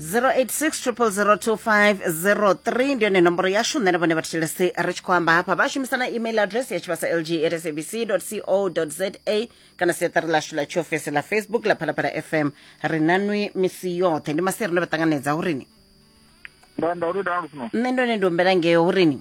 0860002503 ndi yone nomboro yashu nṋe na vhone vha thetshelesi ri tshi khou amba hafha vha shumisana email address ya tshivhasa lg rsabc co za kana siaṱari lashu ḽa tshiofisi ḽa facebook ḽa phalaphala fm ri nanwi misi yoṱhe ndi maseri ndo vha ṱanganedza hurini nda nda uri dana lufuno nṋe ndone ndi humbela ngeo hurini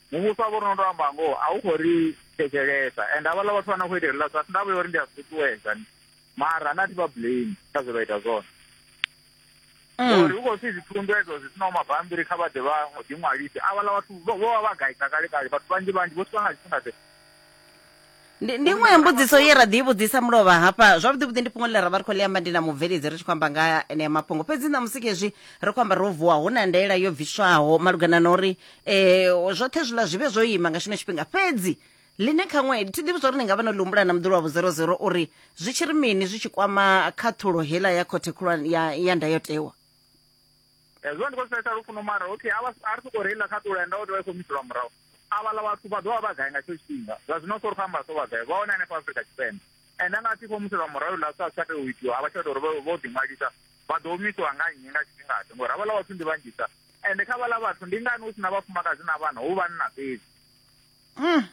muvhuso wavho rino ndo amba ngoho a u khou ri thetshelesa and havhaḽa vhathu vha na khou ita heliḽa zwithu ndavha ya uri ndi a zwi ṱuṱuwedza mara na thi vha blame kha zwe vha ita zwone mm. uri hu khou pfhi zwithundu edzo zwi sinaho mabambiri kha vha ḓe vha ḓiṅwalise avhaḽa vhathu vho vha vha gaisa kale kale vhathu vhanzhi vhanzhi vho swika nga tshifhinga tshe ndi iṅwe ya mbudziso ye ra ḓi vhudzisa mulovha hafha zwavhuḓi vhuḓi ndi fhungo ḽine ra vha ri khou ḽi amba ndi na mubveledzi ri tshi khou amba nga enea mafhungo fhedzi ṋamusi khezwi ri khou amba ro vuwa hu na ndaela yo bviswaho malugana na uri um zwoṱhe zwiḽa zwi vhe zwo ima nga tshino tshifhinga fhedzi ḽine khaṅwe thi ḓivhi zwa uri ni nga vha no ḽi humbula na muḓulu wa vhuzero zero uri zwi tshi ri mini zwi tshi kwama khaṱhulo heiḽa ya khothe khulwane ya ndayotewa hezwo ndi khou fhesa lufuno mara okay a ri sokou reila kha ṱula enda o tea i khou miselwa murahu avhala vhathu vha ḓovha vha gai nga tsho tshifhinga zwa zwino sori khou amba so vha gai vha hone hanefha afrika tshipembe ende anga a tshi khou muselwa murahu la sa tsha tea u itiwa a vha tsha ita uri vho ḓiṅwalisa vha ḓo humisiwa nga nnyi nga tshifhingaḓe ngori havhala vhathu ndi vhanzhisa ende kha vhala vhathu ndi ngani hu si na vhafumakadzi na vhana hu vhanna fhedzi mm.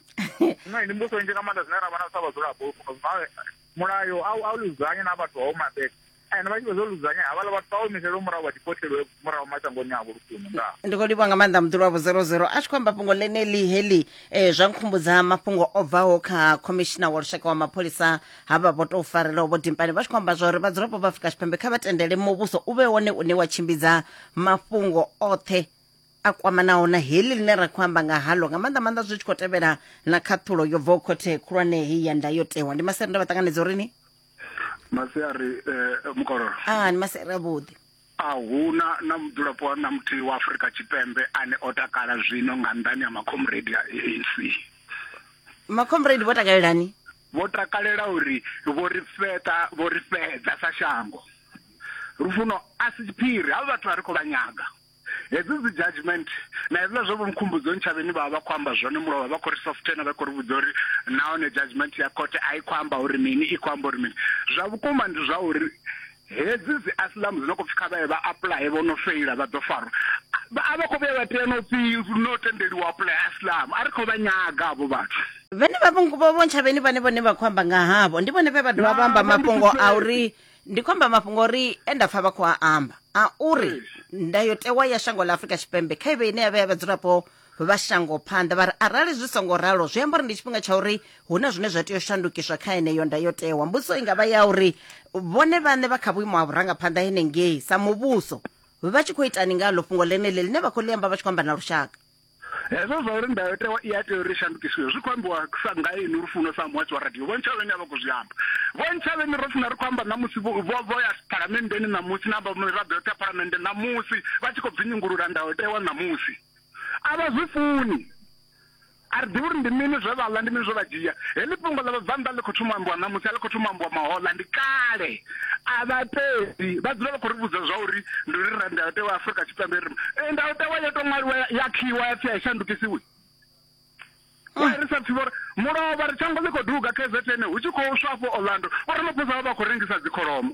no ndi mbuso nzhi nga maanḓa zwine ra vha na sa vhadzulapo zwino mulayo a u ludzanye na vhathu vha vho mabeka ene vha tshi vha zwo ludzanya havhala vhathu vha omiselwe murahu vha dipothelwe murahu mashangoni avho lufuno ndaa ndi khou livhuwa nga maanḓa muḓulu wavho 00 a tshi khou amba fhungo ḽeneḽi heḽi um zwa nkhumbudza mafhungo o bvaho kha khomishina wa lushaka wa mapholisa ha vha vho tou farelaho vho dimpani vha tshi khou amba zwa uri vhadzulapo vha afrika tshipembe kha vha tendele muvhuso u vhe wone une wa tshimbidza mafhungo oṱhe a kwamanaho na heḽi ḽine ra khou amba nga halo nga maanḓa maanḓa zwi tshi khou tevhela na khaṱhulo yo bvaho khothe khulwane heyi ya ndayotewa ndi maseru nda vha ṱanganedza uri ni masiari eh, mukororo ah ni masiari avhuḓi a huna na mudzulapo wa na muthihi wa afurika tshipembe ane o takala zwino nga nḓani ya makhomredi a anc makhomredi vho takalelani vho takalela uri vho ri feta vho ri fedza sa shango lufuno a si tshiphiri havha vhathu a ri khou vha nyaga hedzi dzi judgment na hezwiḽa zwo vho mkhumbudzo ntshavheni vha vha khou amba zwone mulovha vha khou ri softena vha khou ri vhudza uri nahone judgment ya khothe a i khou amba uri mini i khou amba uri mini zwa vhukuma ndi zwa uri hedzi dzi asilamu dzi no khou pfi kha vha ye vha apuḽaye vho no feila vha ḓo farwa a vha khou vhuya vha tea no pfi no tendeliwa apuḽaya asilamu a ri khou vha nyaga avho vhathu vhene vha vho ntshavheni vhane vhone vha khou amba nga havho ndi vhone vhe vha dovha vha amba mafhungo a uri ndi khou amba mafhungo uri e nda pfa vha khou a amba a uri ndayotewa ya shango ḽa afurika tshipembe kha ive ine ya vha ya vhadzulapo vha shango phanḓa vha ri arali zwi songo ralo zwi amba uri ndi tshifhinga tsha uri hu na zwine zwa tea u shandukiswa kha yeneyo ndayotewa mbudziso i nga vha ya uri vhone vhaṋe vha kha vhuimo ha vhurangaphanḓa henengei sa muvhuso vha tshi khou itani nga ḽo fhungo ḽeneḽi ḽine vha khou ḽi amba vha tshi khou amba na lushaka hezwo zwa uri ndayotewa i a tea uri shandukisiwe zwi khou ambiwa sa nga ini lufuno sa muhatsi wa radio vhontshavheni a vha khou zwi amba vhontshavheni ro funa ri khou amba ṋamusi vho ya phalamenndeni ṋamusi na amba miraḓo yoṱhe ya phalamennde ṋamusi vha tshi khou bvinyungulula ndayotewa ṋamusi a vha zwi funi a ri ḓivhi uri ndi mini zwe vha ḽa ndi mini zwe vha dzhia heḽi fhungo ḽa vhabvannḓa ḽi khou thoma ambiwa ṋamusi a ḽi khou thoma ambiwa mahoḽa ndi kale a vha peli vha dzula vha khou ri vhudza zwa uri ndi uri ra ndayotewa ya afurika tshipembe ri eh, ndayotewa yo to ṅwaliwa ya khiwa ya pfi a i shandukisiwi wa ah. ri sa pfi vhori mulovha ri tshango ḽi khou duga kzn hu tshi khou swa afho orlando vho ri maphosa vha vha khou rengisa dzikholomo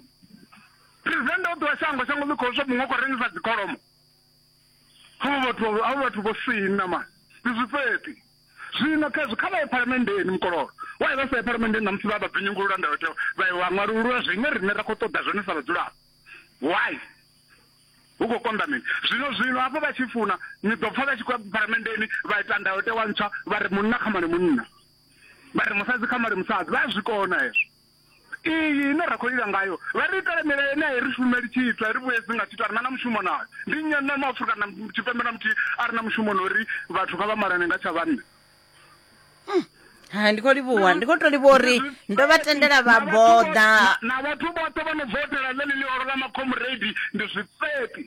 president o ṱuwa shango shango ḽi khou swa muṅwe khou rengisa dzikholomo avho vhathu avho vhathu vho sina ma ndi zwifheṱi Zwino khezwo kha vha ye phalamenndeni, mukololo wa ye vha sa ye phalamenndeni ṋamusi vha vha binyungulula ndayotewa, vha ye wa ṅwalulula zwine riṋe ra khou ṱoḓa zwone sa vhadzulapo. Why? Hu khou konḓa mini? Zwino, zwino hafho vha tshi funa, ni ḓo pfa vha tshi khou ya phalamenndeni vha ita ndayotewa ntswa, vha ri munna kha male munna, vha ri musadzi kha male musadzi. Vha a zwi kona hezwo. iyi ine ra khou lila ngayo vha ri itela milayo ine a i ri shumeli tshithu a ri vhuyedzi nga tshithu a ri na na mushumo nayo ndi nnyi na maafurika na tshipembe na muthihi a ri na mushumo na uri vhathu kha vha malane nga tsha vhanna ha ndi khou livhuwa ndi khou tou livhuwa uri ndo vha tendela vha boḓa na vhathu vhoṱhe vha no bvotela ḽeḽi ḽihoro ḽa makhomuredi ndi zwifheṱi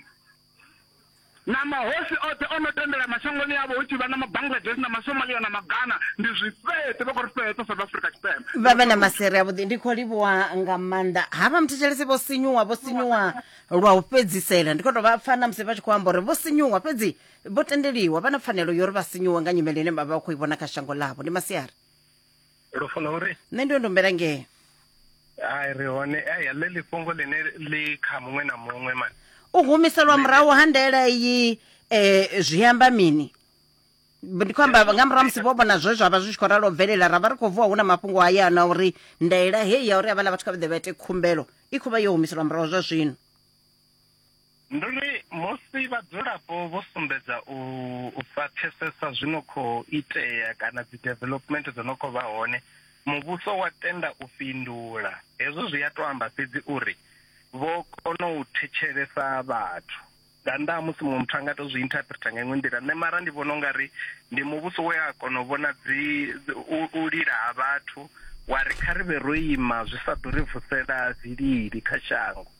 na mahosi oṱhe o no tendela mashangoni avho hu tshi vha na mabangladesh na masomalia na magana ndi zwifheṱe vha khou ri fheṱa south africa tshipembe vha vhe na masere avhuḓi ndi khou livhuwa nga maanḓa havha muthetshelesi vho sinyuwa vho sinyuwa lwa u fhedzisela ndi khou tou vha pfa na musi vha tshi khou amba uri vho sinyuwa fhedzi vho tendeliwa vha na pfanelo yo uri vha sinyuwe nga nyimele ine vha vha vha khou i vhona kha shango ḽavho ndi masiari lufuno uri nṋe ndo ndombela ngee ai ri hone ai ḽe ḽifhungo ḽine ḽi kha muṅwe na muṅwe mani u humiselwa murahu ha ndaela iyi um zwi amba mini ndi khou amba nga murahu musi vho vhona zwe zwa vha zwi tshi khou ralo bvelela ra vha ri khou vuwa hu na mafhungo haya na uri ndaela heyi ya uri havhaḽa vhathu kha vha ḓe vha ite khumbelo i khou vha yo humiselwa murahu zwa zwino Ndi uri musi vhadzulapo vho sumbedza u sa pfesesa zwi no khou itea kana dzi development dzo no khou vha hone muvhuso wa tenda u fhindula hezwo zwi a to amba fhedzi uri vho kona u thetshelesa vhathu nga nnḓa ha musi muṅwe muthu a nga to zwi interpreter nga iṅwe nḓila nṋe mara ndi vhona ungari ndi muvhuso we a kona u vhona dzi u lila ha vhathu wa ri kha ri vhe ro ima zwi sa ḓo ri vusela zwilili kha shango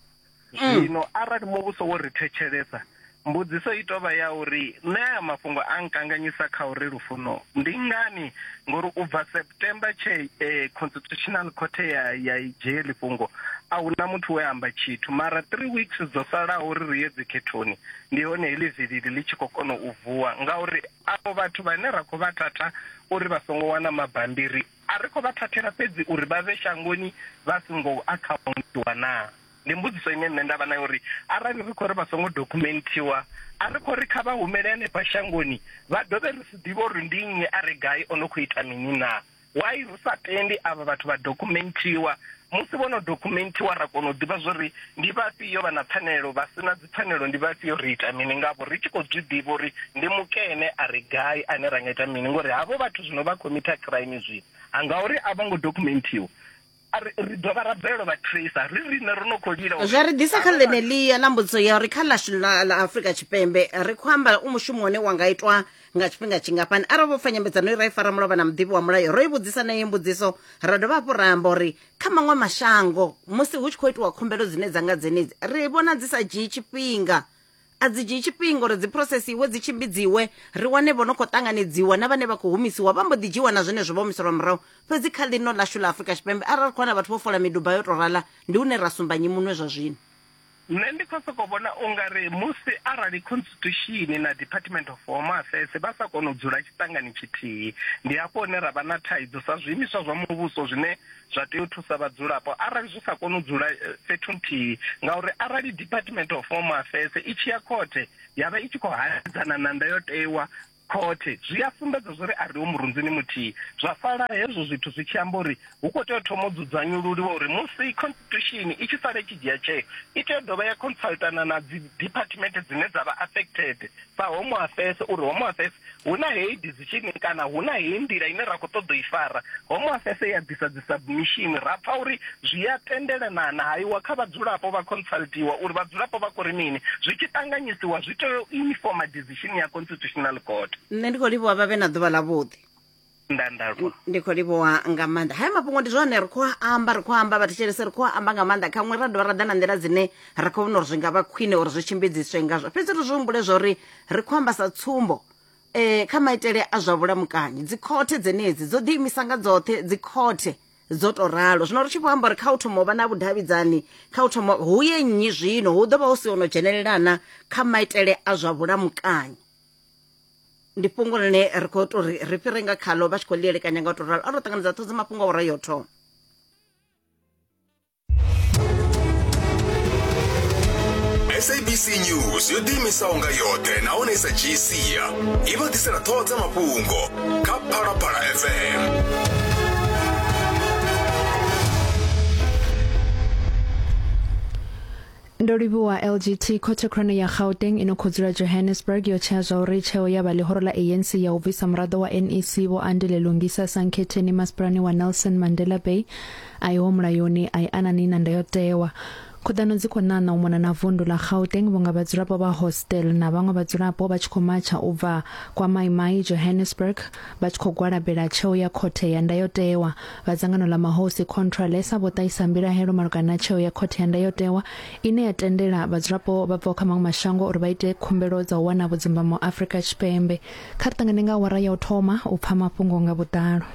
mm. zwino arali muvhuso wo ri thetshelesa mbudziso i tovha ya uri nṋe aya mafhungo a nkanganyisa kha uri lufuno ndi ngani ngori u bva september tshe eh, constitutional court ya ya dzhie lifhungo a hu na muthu we amba tshithu mara three weeks dzo salaho uri ri ye dzikhethoni ndi hone heḽi vilili ḽi tshi khou kona u vuwa ngauri avho vhathu vhane ra khou vha tata uri vha songo wana mabambiri A ri khou vha thathela fhedzi uri vha vhe shangoni vha songo akhauntiwa naa? Ndi mbudziso ine nṋe nda vha nayo uri arali ri khou ri vha songo dokhumenthiwa, a ri khou ri kha vha humele hanefha shangoni vha dovhe ri si ḓivhe uri ndi nnyi a re gai o no khou ita mini naa? Why ri sa tendi avha vhathu vha dokhumenthiwa, musi vho no dokhumenthiwa ra kona u ḓivha zwa uri ndi vhafhio vha na pfanelo, vha si na. pfanelo ndi vhafhio ri ita mini ngavho ri tshi khou zwi ḓivha uri ndi mukene a ri gai ane ra nga ita mini ngori havho vhathu zwino vha khomitha crime zwino a ngauri a vho ngo dokumentiwa a ri ri dovha ra bvelelwa vha tracer ri riṋe ro no khou lila uri- zwa ri ḓisa kha ḽeneḽia ḽa mbudziso ya uri kha ḽashu ḽa ḽa afrika tshipembe ri khou amba u mushumo une wa nga itwa nga tshifhinga tshingafhani arali vho pfa nyambedzano i ra i fara mulovha na muḓivhi wa mulayo ro i vhudzisa na iyi mbudziso ra dovha hafhu ra amba uri Kha maṅwe mashango, musi hu tshi khou itiwa khumbelo dzine dza nga dzenedzi, ri vhona dzi sa dzhii tshifhinga. A dzi dzhii tshifhinga uri dzi phurosesiwe, dzi tshimbidziwe, ri wane vho no khou ṱanganedziwa na vhane vha khou humisiwa vha mbo ḓi dzhiiwa na zwenezwo vha humiselwa murahu. Fhedzi kha ḽino ḽashu ḽa Afrika Tshipembe, arali ri khou wana vhathu vho fola miduba yo tou rala, ndi hune ra sumba nnyi munwe zwa zwino. Nṋe ndi khou sokou vhona u nga ri musi arali Khonstitushini na Department of Home Affairs vha sa kona u dzula tshiṱangani tshithihi, ndi hafho hune ra vha na thaidzo sa zwiimiswa zwa muvhuso zwine zwa tea u thusa vhadzulapo arali zwi sa koni u dzula fhethu nthihi ngauri arali Department of Home Affairs i tshi ya khothe ya vha i tshi khou hanedzana na ndayotewa Khothe, zwi a sumbedza zwo ri a riho murunzini muthihi. Zwa sala hezwo zwithu zwi tshi amba uri hu khou tea u thoma u dzudzanyululiwa uri musi Constitution i tshi sala i tshi dzhia tsheo, i tea u dovha ya consultana na dzi department dzine dza vha affected sa Home Affairs uri Home Affairs hu na heyi decision kana hu na heyi nḓila ine ra khou ṱoḓa u i fara. Home Affairs ya ḓisa dzi submission, ra pfa uri zwi a tendelanana, ha iwa kha vhadzulapo vha consultiwa uri vhadzulapo vha khou ri mini. Zwi tshi ṱanganyisiwa zwi tea u informer. decision ya constitutional court nṋe ndi khou livhuwa vha vhe na ḓuvha ḽa vhuḓi ndandalwa ndi khou livhuwa nga maanḓa haya mafhungo ndi zwone ri khou a amba ri khou amba vhathetshelese ri khou a amba nga maanḓa khaṅwe ra dovha ra ḓa na nḓila dzine ra khou vhona uri zwi nga vha khwine uri zwi tshimbidziswe ngazwo fhedzi ri zwi humbule zwa uri ri khou amba sa tsumbo um kha maitele a zwa vhulamukanyi dzikhothe dzenedzi dzo ḓiimisa nga dzoṱhe dzikhothe dzo to ralo zwino ri tshi vho amba uri kha u thoma u vha na vhudavhidzani kha u thoma hu ye nnyi zwino hu ḓo vha hu si ono dzhenelelana kha maitele a zwa vhulamukanyi ndi fhungo ḽine ri khou tou ri ri fhire nga khaḽo vha tshi khou ḽi elekanya nga u to ralo a ro ṱanganedza ṱhodzi mafhungo a ura yo thoma sabc news yo ḓiimisaho nga yoṱhe nahone i sa dzhii sia i vha ḓisela ṱhoho dza mafhungo kha phalaphala fm Ndo livhuwa LGT khothe khulwane ya Gauteng ino khou dzula Johannesburg yo tshea zwa uri tsheo ya vha ḽihoro ḽa ANC ya u bvisa muraḓo wa NEC Vho Andile Lungisa Sankhetheni masipalani wa Nelson Mandela Bay a iho mulayoni a i anani na ndayotewa. Khuḓano dzi khou ṋaṋa u mona na vundu ḽa Gauteng vhunga vhadzulapo vha Hostel na vhaṅwe vhadzulapo vha tshi khou matsha u bva Kwa Mai Mai, Johannesburg vha tshi khou gwalabela tsheo ya khothe ya ndayotewa. Vha dzangano ḽa mahosi Contra Lesa vho ṱahisa mbilahelo malugana na tsheo ya khothe ya ndayotewa ine ya tendela vhadzulapo vha bvaho kha maṅwe mashango uri vha ite khumbelo dza u wana vhudzimbamo Afrika Tshipembe. Kha ri ṱangane nga awara ya u thoma u pfa mafhungo nga vhuḓalo.